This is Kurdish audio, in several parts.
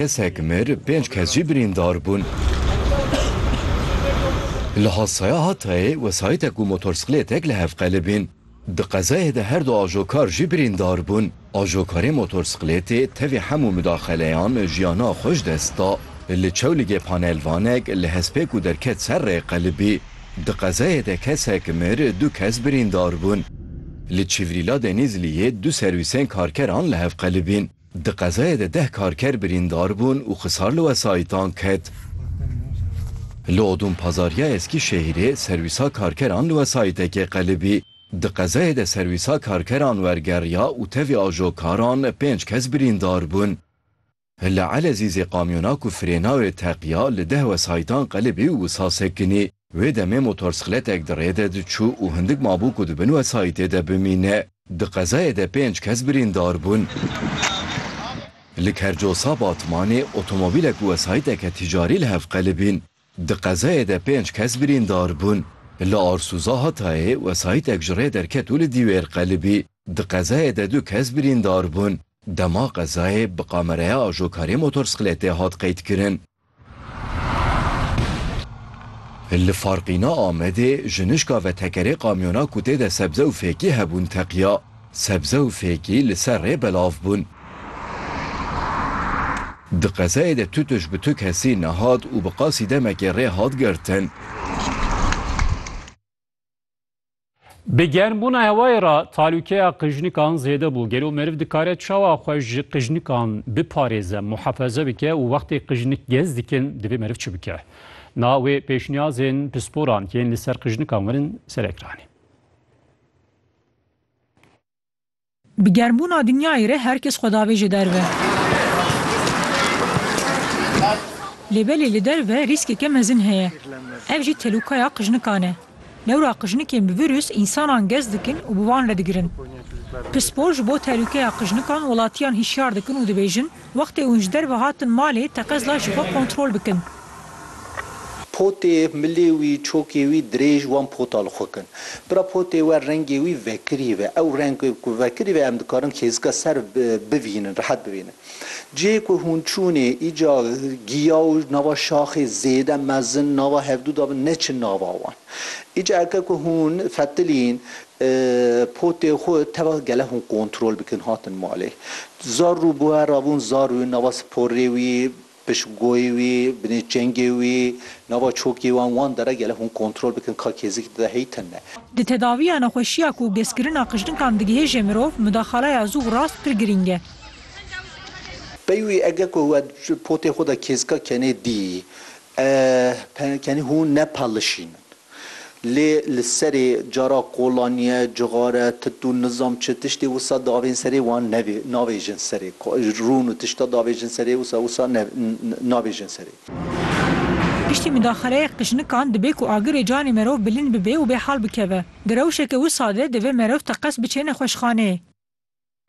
Kesek mir, pênc kes jî birîndar bûn. Li Hasaya Hatayê wesayîtek û motorsiklêtek li hev qelibîn. Di qezayê de her du ajokar jî birîndar bûn. Ajokarê motorsiklêtê tevî hemû mudaxeleyan jiyana xwe ji dest da. Li Çewligê panelvanek li hespê ku derket ser rê qelibî. Di qezayê de kesek mir, du kes birîndar bûn. Li Çîvrîla Denîzliyê du serwîsên karkeran li hev qelibîn. Di qezaya de deh karker birîndar bûn û xisar li wesayîtan ket. Li Odûn Pazar ya Eskîşehîrê serwîsa karkeran li wesayîtekê qelibî. Di qezayê de serwîsa karkeran wergeriya û tevî ajokaran pênc kes birîndar bûn. Li Elezîzê kamyona ku frêna wê teqiya li deh wesayîtan qelibî û wisa sekinî. Wê demê motorsixletek di rê de diçû û hindik mabû ku di bin wesayîtê de bimîne. Di qezayê de pênc kes birîndar bûn. Li Kercosa Batmanê otomobîlek û wesayîteke ticarî li hev qelibîn. Di qezayê de pênc kes birîndar bûn. Li Arsûza Hatayê wesayîtek ji rê derket û li dîwêr qelibî. Di qezayê de du kes birîndar bûn. Dema qezayê bi kameraya ajokarê motorsixletê hat qeydkirin. Li Farqîna Amedê jinişka vetekerê kamyona ku tê de sebze û fêkî hebûn teqiya. Sebze û fêkî li ser rê belav bûn. Di qezayê de tu tuj bi tu kesî nehat û bi qasî demekê rê hat girtin. Bi germbûna hewayê re talûkeya qijnikan zêde bû. Gelo meriv dikare çawa xwe ji qijnikan biparêze, muhefeze bike û wextê qijnik gez dikin divê meriv çi bike? Na wê pêşniyazên pisporan yên li ser qijnikan werin ser ekranê. Bi germbûna dinyayê re her kes xwe davêje derve. Lê belê li derve rîskeke mezin heye. Ev jî telûkaya qijnikan e. Lewra qijnikên bi vîrus însanan gez dikin û bi wan re digirin. Pispor ji bo telûkeya qijnikan welatiyan hişyar dikin û dibêjin, Wextê hûn ji derve hatin malê, teqez da ji xwe kontrol bikin. Potê, milê wî, çokê wî, dirêj, wan pota li xwe kin. Bira potê we rengê wî vekirî ve. Ew reng ku vekirî ve em dikarin kêzika ser bivînin, rihet bivînin. Cihê ku hûn çûnê, îca giya û nava şaxê zêde mezin nava hevdû da bin, neçin nava wan. Îca eke ku hûn fetilîn potê xwe, teva gele hûn kontrol bikin hatin malê. Zarrû bûe rabûn zarrû, nava sporê wî, piştgoyê wî, binê çengê wî, nava çokê wan, wan dere gele hûn kontrol bikin ka kêzik dide hey tin ne. Di tedawiya nexweşiya ku geskirina qijlinkan digihêje mirov, mudaxaleya zû û rast pir girîng e. Pey wî ege ku we potê xwe de kêzika kenê dî, Ehe, kenî hûn ne pelişînin. Lê li serê cara kolaniye, cixare, tit û nizam çi tiştê wisa davên serê wan nevê, navêjin serê. Rûn û tişta davêjin serê wisa wisa ne, navêjin serê. Piştî midaxeleyek qijinikan dibê ku agirê canê merov bilind bibe û bê hal bikeve. Di rewşeke wisa de divê merov teqez biçê nexweşxaneyê.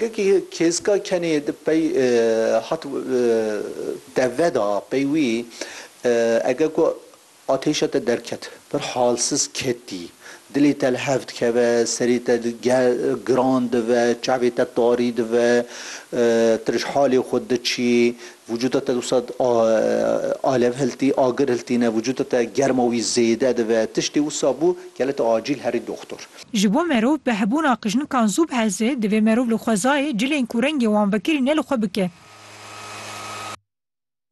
Kekî kêska kenê di pey hat teve da pey wî ege ku atêşa te derket pir halsiz ketî. Dilê te li hev dikeve, serê te giran dive, çavê te tarî dive, tu ji halê xwe diçî, vücuda te dîsa alev hiltî, agir hiltîne, vücuda te germa wî zêde dive. Tiştê wisa bû, gelê tu acîl herî doxtor. Ji bo merov bi hebûna qijnikan zû biheze, divê merov li xwezayê cilên ku rengê wan vekirî ne li xwe bike.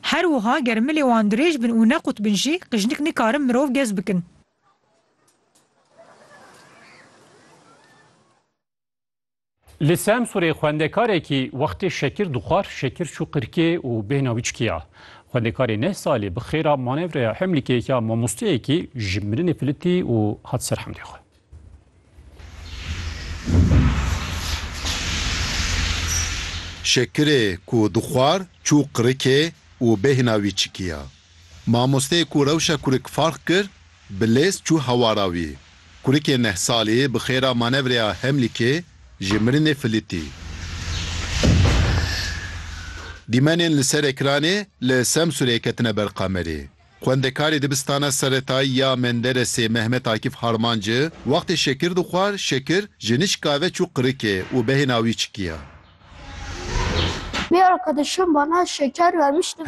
Her wiha ger milê wan dirêj bin û neqût bin jî, qijnik nikarin mirov gez bikin. Li Semsûrê xwendekarekî wextê şekir dixwar şekir çû qirkê û bêhna wî çikiya. Xwendekarê neh salî bi xêra manevreya hemlîkek ya mamosteyekî ji mirinê filitî û hat ser hemdê xwe. Şekirê ku dixwar çû qirikê û bêhna wî çikiya. Mamosteyê ku rewşa kurik farq kir, bi lez çû hewara wî. Kurikê neh salî bi xêra manevreya Hemlîkê ji mirinê filîtî. Dîmenên li ser ekranê li Semsûrê ketine ber kamerê. Xwendekarê dibistana seretayî ya Menderesê Mehmet Akîf Harmanci wextê şekir dixwar şekir ji nişka ve çû qirikê û behêna wî çikiya. Bi arkadaşım bana şeker vermişti.